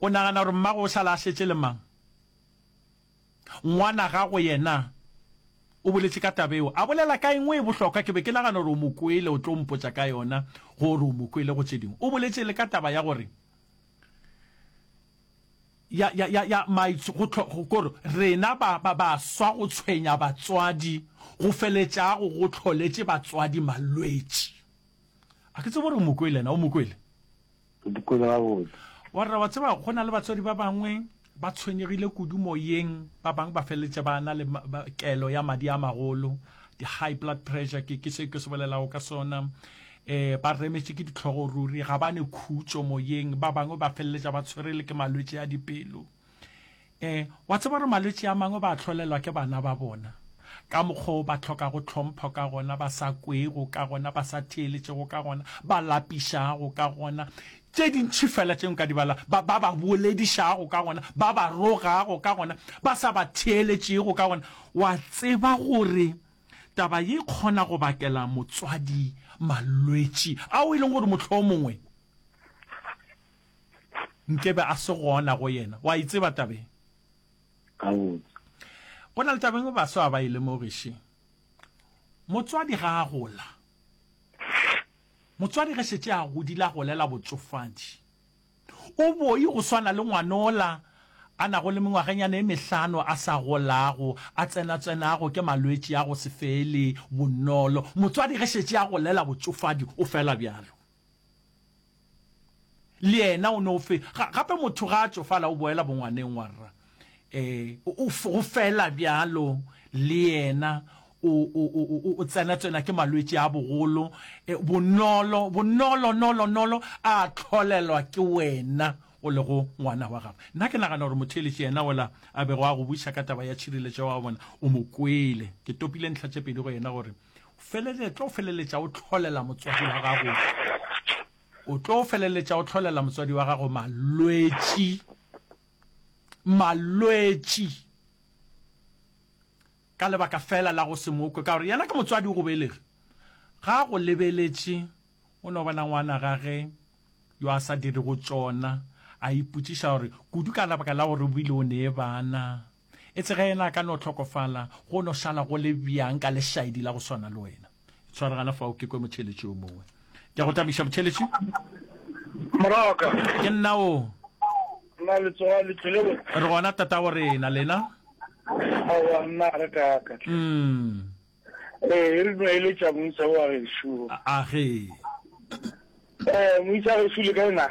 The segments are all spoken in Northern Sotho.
O nagana gore mmago o sala a šetše le mang? Ngwanagago yena o boletše ka taba yeo. A bolela ka engwe e bohlokwa, ke be ke nagana gore o mo kwele, o tlo mpotša ka yona gore o mo kwele go tše dingwe. O boletše le ka taba ya gore ya, ya, ya, ya maitsh, go tlho, go, gore rena ba, ba, baswa go tshwenya batswadi go feletšago go tlholetše batswadi malwetši. A ke tsebe gore o mo kwele na, o mo kwele? Ke mo kwele gabotse. Wa rra, wa tseba go na le batswadi ba bangwe ba tshwenyegile kudu moyeng, ba bangwe ba feleletše ba na le kelo ya madi a magolo, di-high blood pressure, ke ke se ke se bolelago ka sona. Eh, ba remetše ke ditlhogo ruri, ga ba ne khutšo moyeng, ba bangwe ba feleletša ba tshwere le ke malwetši a dipelo. Ee, wa tseba gore malwetši a mangwe ba a hlolelwa ke bana ba bona, ka mokgwa wo ba hlokago tlhompho ka gona, ba sa kwego ka gona, ba sa theeletšego ka gona, ba lapišago ka gona, tše dintši fela tše nka di bala, ba, ba ba boledišago ka gona, ba ba rogago ka gona, ba sa ba theeletšego ka gona. Wa tseba gore taba ye e kgona go bakela motswadi malwetši ao e leng gore mohlomongwe, Nkebe a se gona go yena. Wa e tseba taba e? Gabotse. Go na le taba engwe baswa ga ba e lemoge še. Motswadi ga a gola, motswadi ge šetše a godile a golela botsofadi, o boi go swana le ngwana ola a nago le mengwagenyana e mehlano a sa golago, a tsenatswenago ke malwetši a go se fele bonolo. Motswadi ge šetše a golela botsofadi o fela bjalo. Le yena o no fe, ga, gape motho ga a tšofala o boela bongwaneng, wa rra. E, o, o, go fela bjalo, le yena o, o, o, o, o tsenatsena ke malwetši a bogolo, e, bonolo, bonolo, nolo, nolo, a tlholelwa ke wena o lego ngwana wa gagwe. Nna ke nagana gore motheeletši yena ola a bego a go buša ka taba ya tšhireletšo, wa bona, o mo kwele. Ke topile ntlha tše pedi go yena gore, feleletlo feleletša o tlholela motswadi wa gago o tlo feleletša o tlholela motswadi wa gago malwetši malwetši ka lebaka fela la go se mokwe ka gore yena ke motswadi o go belege ga go lebeletše o no bona ngwana gage yo a sa dire go tšona a ipotšiša gore kudu ka lebaka la gore o bile o ne bana E tsega yena a ka no hlokofala, go no šala go le bjang ka lešaedi la go swana le wena. Tshware gana fao ke kwe motheletši yo mongwe. Ke a go tabiša motheletši. Moraka. Ke nna o. Nna le tsoga le tlile bo. Re gona tatago rena, lena? Awa nna re ka ka. Mm. Eh, e re no ile tša moisa wa ge shu. A ge. Eh, moisa ge shu le ka ena.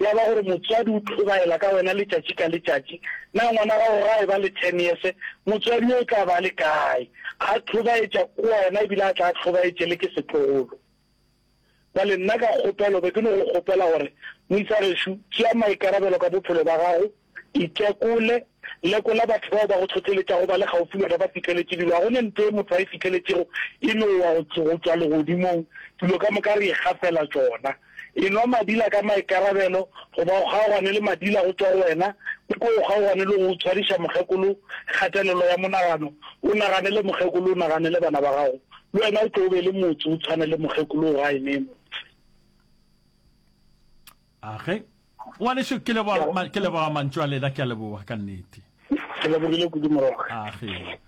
ya ba gore motswadi o hlobaela ka wena letšatši ka letšatši, na ngwana gago ga e ba le ten years, motswadi yo o tla ba a le kae? A hlobaetša ke wena e bile a tla a hlobaetše le ke setlogolo. Bjale nna ka kgopelo be ke no go kgopela gore moisa gešo tšea maikarabelo ka bophelo ba gago, Itekole, Lekola batho bao ba go hlohleletšago ba le kgaufsi le ba ba fihleletše dilo. Ga go ne ntlo ye motho a e fihleletšego e no wa go tšwa legodimong, dilo ka moka re ikgafela tšona. Enwa madila ka maikarabelo goba o kgaogane le madila go tšwa go wena, o ko o kgaogane le go o tshwariša mokgekolo kgatelelo ya monagano, o naganele mokgekolo, o naganele bana ba gago. Le wena o tlo o be le motse o tshwane le mokgekolo o gae ne motse. Age. Ngwanešu, ke leboga, ke leboga mantšu a lena, ke a leboga ka nnete. Ke lebogile kudu morwa. Age.